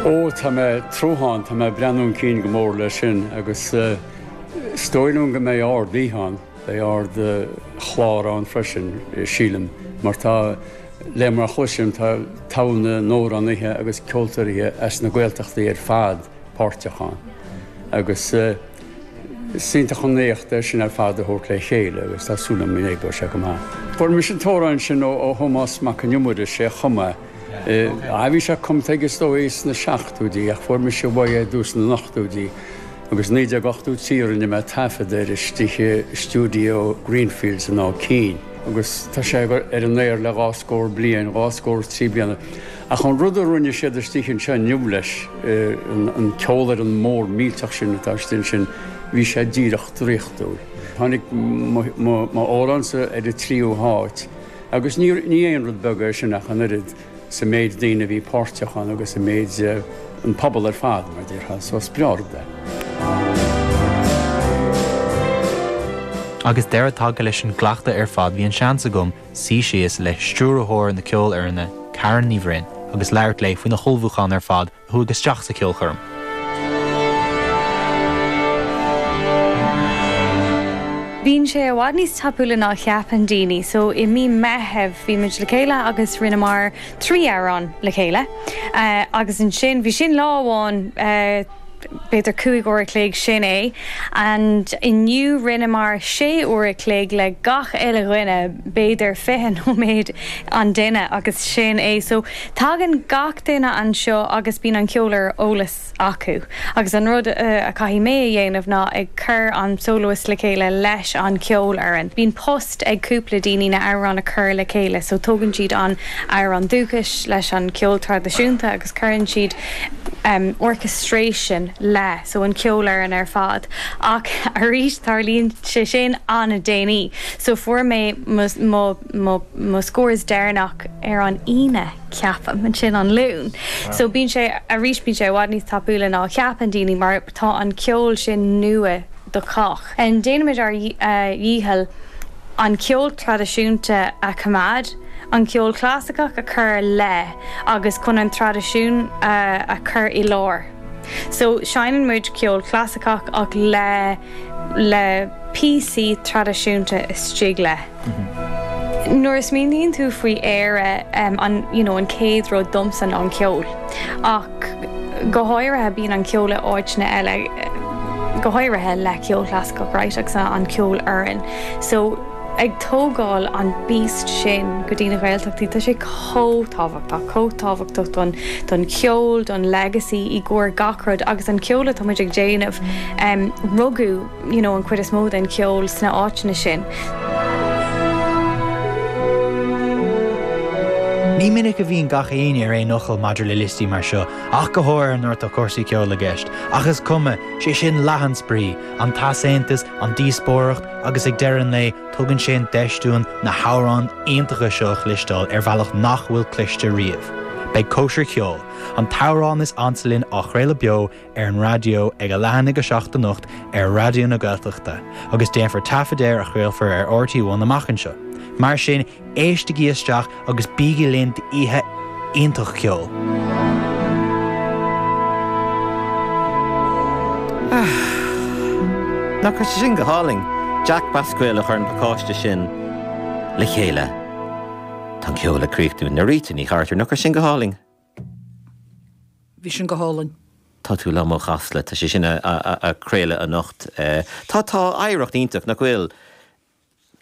Ó, tá mé ag tnúthán, tá mé ag breathnú chun cinn go mór leis sin agus is dóigh liom go mbeidh ardoíche ann, beidh ardchlár ann freisin sílim mar tá le mar a chloisim tá togha na n-amhránaithe agus ceoltóirithe as na Gaeltachtaí ar fad páirteach ann agus is iontach an éacht é sin ar fad a thabhairt le chéile agus tá súil agam go mbeidh sé go maith. Fuair mise an t-amhrán sin ó Thomás Mac Con Iomaire, is é a chum é. Bhí sé cumtha aige is dóigh sna seachtóidí ach fuair mise uaidh é i dtús na n-ochtóidí agus 1983 rinne mé taifead air istigh i stiúideo Greenfields in Áth Cinn agus tá sé ar an aer le dhá scór bliain, dhá scór is trí bliana. Ach an rud a rinne siad istigh anseo inniu leis, an ceolfhoireann mhór mhillteach sin atá istigh ansin, bhí sé díreach draíochtúil. Tháinig m'amhránsa ar an tríú háit. Agus ní aon rud beag é sin ach an oiread, sa mhéid daoine a bhí páirteach ann agus i measc an phobail ar fad, mar a déarfá, so is breá rud é. Agus deireadh tagtha leis an gcleachtadh ar fad bhí an seans agam suí síos le Stiúrthóir na Ceolfhoirne, Karen Ní Bhroin, agus labhairt léi faoina hullmhúchán ar fad chuaigh isteach sa cheolchoirm. Bíonn sé i bhfad níos tapúla ná a cheapann daoine, so i mí Meithimh bhí muid le chéile agus rinneamar trí amhrán le chéile agus ansin bhí sin lá amháin, b'fhéidir cúig uair a chloig, sin é and inniu rinneamar sé uair a chloig le gach uile dhuine, b'fhéidir fiche nóiméad an duine agus sin é. Tagann gach duine anseo agus bíonn an ceol ar eolas acu, agus an rud a chaithfidh mé a dhéanamh ná ag cur an soloist le chéile leis an cheolfhoireann. Bíonn post ag cúpla daoine na amhráin a chur le chéile, so tógann siad an amhrán dúchais leis an cheol traidisiúnta agus cuireann siad orchestration leis, so an cheolfhoireann ar fad. Ach arís, tarlaíonn sé sin an-déanaí, so fuair mé mo, mo mo scóranna deireanach ar an Aoine ceapaim, ansin an Luan so bíonn sé arís bíonn sé i bhfad níos tapúla ná a cheapann daoine mar tá an ceol sin nua do chách and déanaimid ár dhícheall an ceol traidisiúnta a choimeád an ceol clasaiceach a chur leis agus chun an traidisiún a a chur i lár so seinneann muid ceol clasaiceach ach le le píosaí traidisiúnta istigh leis. Nuair a smaoiníonn tú faoi Éire, an chéad rud domsa ná an ceol. Ach go háirithe, bíonn an ceol i áiteanna eile, go háirithe le ceol chlasaiceach, right, agus an cheolfhoireann. So, ag tógáil an beast sin go dtí na Gaeltachtaí, tá sé chomh tábhachtach, chomh tábhachtach don cheol, don legacy, i gcomhair gach rud. Agus an ceol atá muid ag déanamh, rugadh. an chuid is mó den cheol sna áiteanna sin. Ní minic a bhíonn gach éinne ar aon fhocal maidir le liostaí mar seo, ach go háirithe nuair atá cúrsaí ceoil i gceist, ach is cuma, sé sin leath an spraoi, an t-easaontas, an díospóireacht agus ag deireadh an lae tugann sé an deis dúinn na hamhráin iontacha seo a chloisteáil ar bhealach nach bhfuil cloiste riamh. Beidh Cóisir Cheoil, an t-amhrán is ansa linn á chraoladh beo ar an raidió ag a leath i ndiaidh a 7 anocht ar Raidió na Gaeltachta agus déanfar taifead air a chraolfar ar RTÉ One amach anseo. Mar sin, éistigí isteach agus bígí linn d'oíche iontach ceoil! Nach raibh sé sin go hálainn? Jack Basquille a chuir an pacáiste sin le chéile. Tá an ceol ag críochnú. Norita Ní Chartúir, nach raibh sin go hálainn? Bhí sin go hálainn. Tá tú liom ó Chasla. Tá sé sin ag craoladh anocht. Tá, tá. Oidhreacht iontach, nach bhfuil?